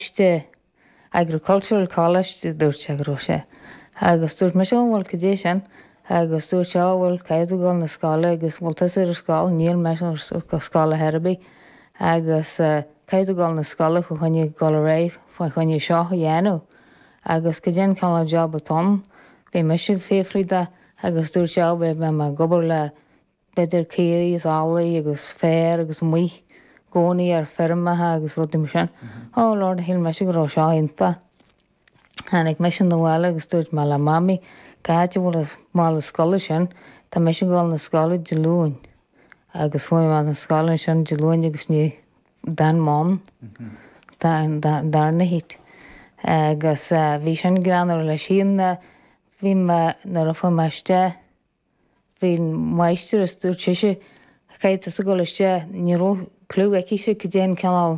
Coláiste, Agricultural College, a dúirt sé go raibh sé. Agus dúirt mise, Ó, bhuel, cad é sin? Agus dúirt sé, Ó, bhuel, caithfidh tú dul 'na scoile agus an bhfuil tusa ar an scoil, níl mise ar scoil ar chor ar bith, agus caithfidh tú dul 'na scoile fá choinne dhul ar aghaidh, fá choinne seo a dhéanamh. Agus cad é an cineál job atá ann, bhí mise ag fiafraí de agus dúirt sé, Ó, beidh mé ag obair le B'fhéidir caoirigh is eallaigh agus féar agus amuigh i gcónaí ar feirmeacha agus rudaí mar sin. Oh Lord, shíl mise go raibh seo iontach. Tháinig mise abhaile agus dúirt mé le Mamaí, Cá háit a bhfuil an mála scoile sin? Tá mise ag dul na scoile Dé Luain. Agus chuaigh mé na scoile ansin Dé Luain agus ní d'fhan mé ann don darna hit. Agus bhí sin greannmhar leis. Bhí mé, nuair a fuair mé isteach. Bhí an mháistreás, dúirt sise, Caithfidh tusa dul isteach, ní raibh cliú aici-se cad é an cineál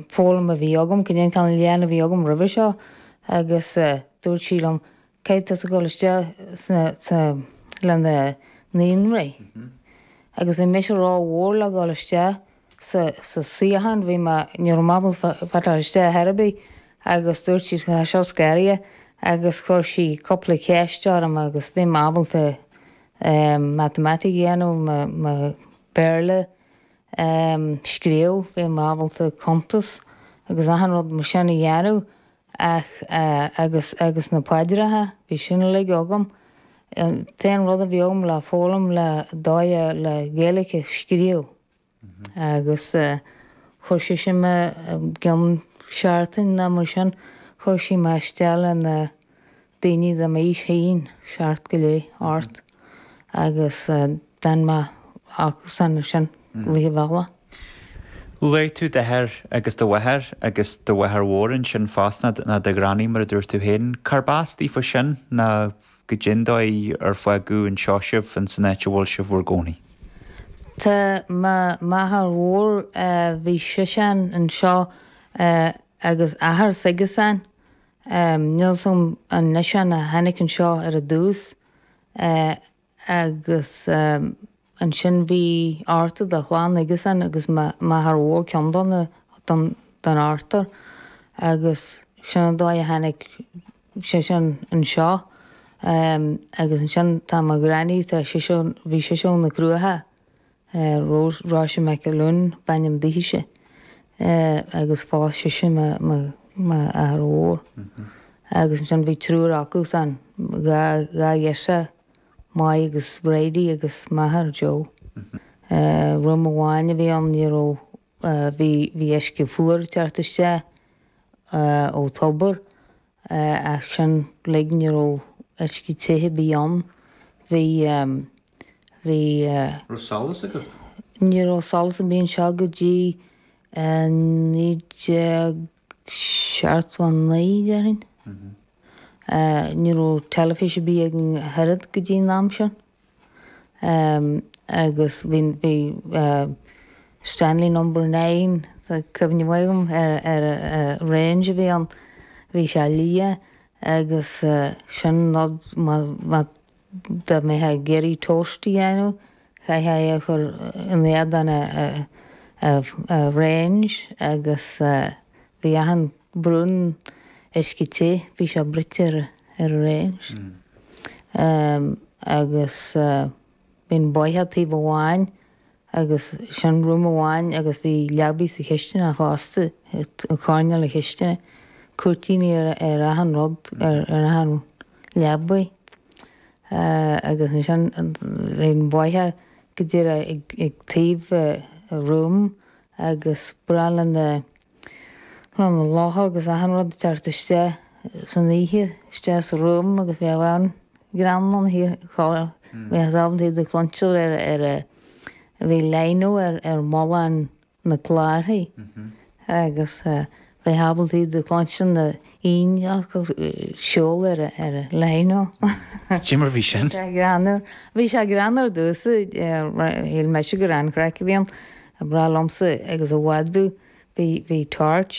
foghlaim a bhí agam, cad é an cineál léann a bhí agam roimhe seo, agus dúirt sí liom, Caithfidh tusa dul isteach le na naíonraí. Agus bhí mise ró-mhór le dhul isteach. sa suíochán, bhí mé, ní raibh mé ábalta fáil isteach ar chor ar bith agus dúirt sí tá seo scanraithe agus chuir sí cúpla ceist orm agus bhí mé ábalta matamaitic a dhéanamh, mo Bhéarla a scríobh, bhí mé ábalta cuntas agus achan rud mar sin a dhéanamh ach agus, agus na paidreacha, bhí sin uilig agam. An t-aon rud a bhí agam le foghlaim le, dóigh, le Gaeilge a scríobh. Agus chuir sise mé i gcionn seachtain ná mar sin, chuir sí mé isteach le na daoine de m'aois féin, seacht go leith, ocht, agus d'fhan mé acusan ansin rith an bhealaigh. Luaigh tú d'athair agus do mháthair agus do mháthair mhór ansin fosta, ná do ghranny mar a dúirt tú féin. Cárb as daofa sin? Ná. cad é an dóigh ar fágadh anseo sibh ins an áit a bhfuil sibh bhur gcónaí. Tá m'athair mhór bhí seisean anseo agus athair s'aigesean. Níl 's agam an eisean a tháinic anseo ar a dtús agus. Ansin bhí ochtar de chlann aigesean agus m'athair mhór ceann de na, den ochtar agus sin an dóigh a tháinig seisean anseo agus ansin tá mo ghranny, tá sise, bhí sise ó na Cruacha, Rose, Róise McAloon b'ainm dithise agus phós sise m'athair mhór agus ansin bhí triúr acusan, dhá, dhá ghirseach. May agus Reidy agus máthair Joe. Room amháin a bhí ann, ní raibh, bhí, bhí uisce fuar ag teacht isteach ó thobar ach sin uilig, ní raibh uisce te ar bith ann. Bhí, bhí. An raibh solas agat? Ní raibh solas ar bith anseo go dtí 19. Seachtó a naoi, déarfainn. Ní raibh teilifís ar bith againn ach oiread go dtí an am sin. Agus bhí Stanley Number Nine, tá cuimhne mhaith agam ar an range a bhí ann. Bhí sé liath agus sin nod má Dá mbeifeá ag iarraidh tost a dhéanamh, chaithfeá é a chur in éadan an range agus bhí achan braon uisce te, bhí sé bruite ar an range. Agus bhí an bóitheach taobh amháin agus sin room amháin agus bhí leabaidh sa chistineach fosta, i gcoirnéal na cistine, cúirtíní ar achan rud, ar achan leabaidh agus ansin bhí an bóitheach go díreach ag taobh room agus ba ghnách le na. lucha, na lucha agus achan rud ag teacht isteach san oíche, isteach sa room agus bhí abhainn greann ann thiar thall, bhíothas ábalta iad a chluinstin ar a, ar a, bhí lino ar, ar mhullach na gclárthaí agus bhíothas ábalta iad a chluinstin na hingne acu ag siúl ar a, ar an lino. Cé mar bhí sin? Bhí sé greannmhar, bhí sé greannmhar ar dtús, shíl mise gur an-chraic a bhí ann. Ag brath liomsa agus i bhfad dú, bhí, bhí tabhairt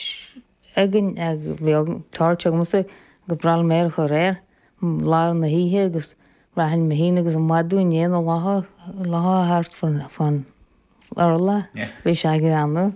againn, bhí tabhairt agamsa agus braithim air chomh réir, lá ar na hoíche agus rachainn mo chinn agus i mbhfad dú i ndiaidh na locha, locha thart fán urla, bhí sé ag rannú.